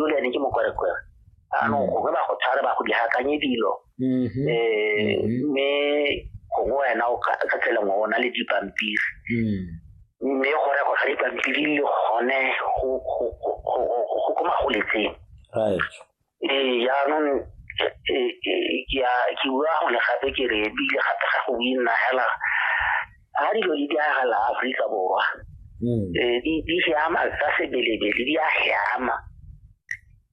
julian ke mokwerekwere anong mm. gongwe ba go tshware ba go di hakanye dilo um mme gongwe wena o ka tsela ngwe o na le dipampiri mm. mme go rego ga dipampiri le gone go ko magoletseng ee jaanong e, e, e, ke bua gone gape ke re ebile gape ga go o inagela ha dilo di diragala Afrika Borwa mm. eh, di siama tsa sebelebele di a siama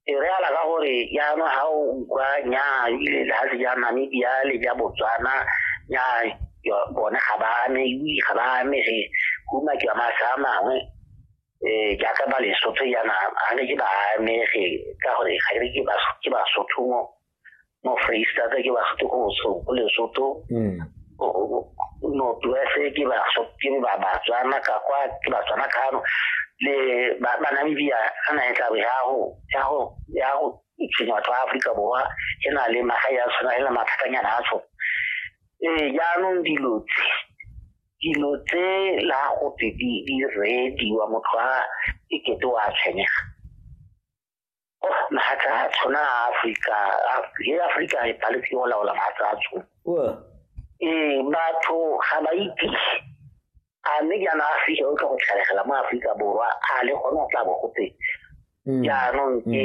e re ala ka gore jaanong ga o utlwa nya ile lefatshe ja namibia le ja botswana nya bone ga ba ame ui ga ba ame ge kuma ke amasa a mangwe um jaaka ba lesotho yana ga ne ke ba amege ka gore ga ke ke basotho mo no freestyle da gila khatu ko so le so to no tu ese ke ba so ke ba ba tsana ka kwa ke ba tsana ka no le ba ba na bibia ana e tla ya ho ya ho ya ho tsenya tsa Afrika borwa e na le maga ya tsona e na mathatanyana a tsona eh jaanong dilo tse dilo tse la go tse di di rediwa motho a e kete wa tshwenyega mahatla a tshwana a afrika le afrika e paletse go laola mahatla a tshwana ee batho ga ba itse a mme jaana afrika o tla go tlhalegela mo aforika borwa a le gone go tla bo gote mm. jaanong mm.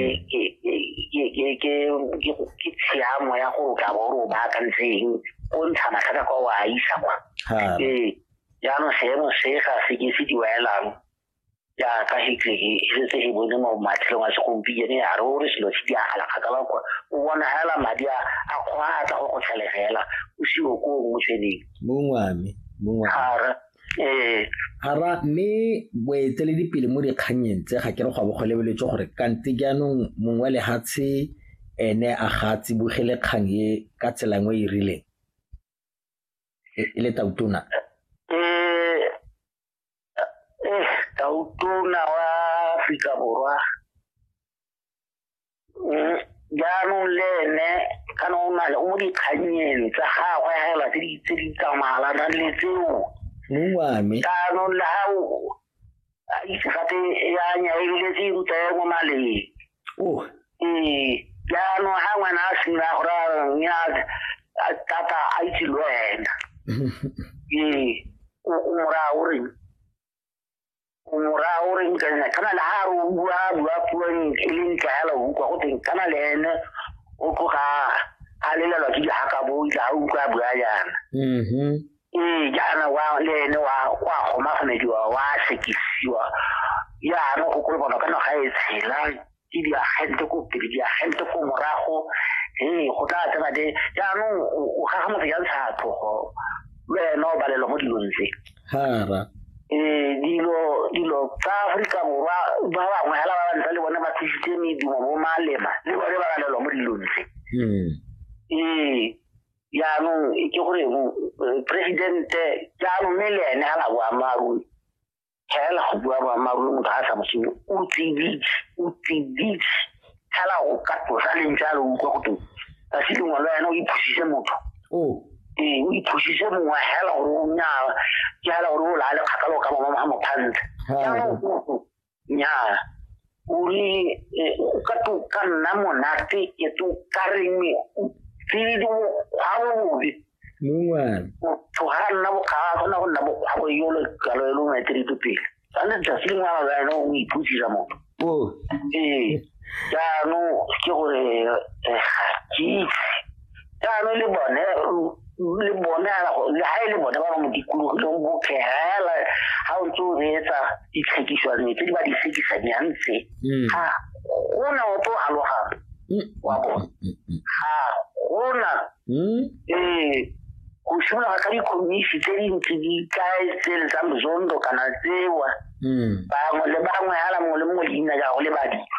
ke tshiamo ya gore o tla bo ore o baakantseng o ntsha matlhaka kwa o a isa kwa ee jaanong seemo se ga se ke se diwaelang jaaka hitlege e setse e bone mo matlhelong a segompieno ya re o re selo se diagala kgakala kwa o bona fela madi a a kgwaatla go go tlhalegela o seo ko o motsweding mongwame mongwame gara ee Hara mme boeteledipele mo dikganyeng tse ga ke re go bo go lebeletswe gore kante jaanong mongwe wa lehatshe ene a ga a tsibogele kgang e ka tsela nngwe e e rileng e e le tautona um eh tautona wa Afrika Borwa mm, jaanong le ene kana o na le o mo dikganyeng tsa gagwe hela tse di tse di tsamaelana le tseo mongwame jaanong le ga o a itse gape ya nya e biletse ruta ya mo maleng ee jaanong ga ngwana a simolola go raya mme a tata a itse le wena ee o moraya o reng o moraya o reng ka nna kana le ga re o bua bua puo e le ntla ya la utlwa go teng kana le ene o tloga a lelelwa ke dihaka bo itla a utlwa a bua yana ee jaana wa le ene wa wa gomagomediwa wa sekisiwa jaana go kolobana ka naga e tshela ke diagente ko pele diagente ko morago ee go tla tsena de jaanong o gaga motho ya ntsha tlogo le ena o balelwa mo dilong tse hara ee dilo dilo tsa aforika borwa ba bangwe hela ba ba ntse le bone ba thusitse medumo bo malema le bone ba balelwa mo dilong tse hmm. ee jaanong ke gore presidente jaanong mme le ene a na boammaaruri fela go bua boammaaruri motho ga a sa mosenyo o tsiditse o tsiditse fela go ka tlosa leng jalo utlwa go teng ka se lengwe le wena o iphusise motho ee o iphusise mongwe fela gore o nyala ke fela gore o laa lekgakalo ka mama ga mophantsha jaanong nyaa o re eh, o ka to ka nna monate ke to ka reng o tsile di bokgwabobe mongwana motho ga a nna bokgaba gona go nna bokgwabo yo le kalo e lo maeterito pele sane tsatsi lengwe a ba ene o iputsisa motho o ee jaanong ke gore eh, ga ke itse jaanong le bone le bone le ga e le bone ba ba mo dikologileng bophegela ga o ntse o reetsa ditlhekiswane tse di ba di tlhekisanyang tse mm. ga gona o tlo galogang mm. wa bone mm, ga gona ee go simologa ka dikhomisi tse dintsi di kae tse le tsa mozondo kana tsewa hmm. bangwe le bangwe ala mongwe le mongwe leina jago le badilwa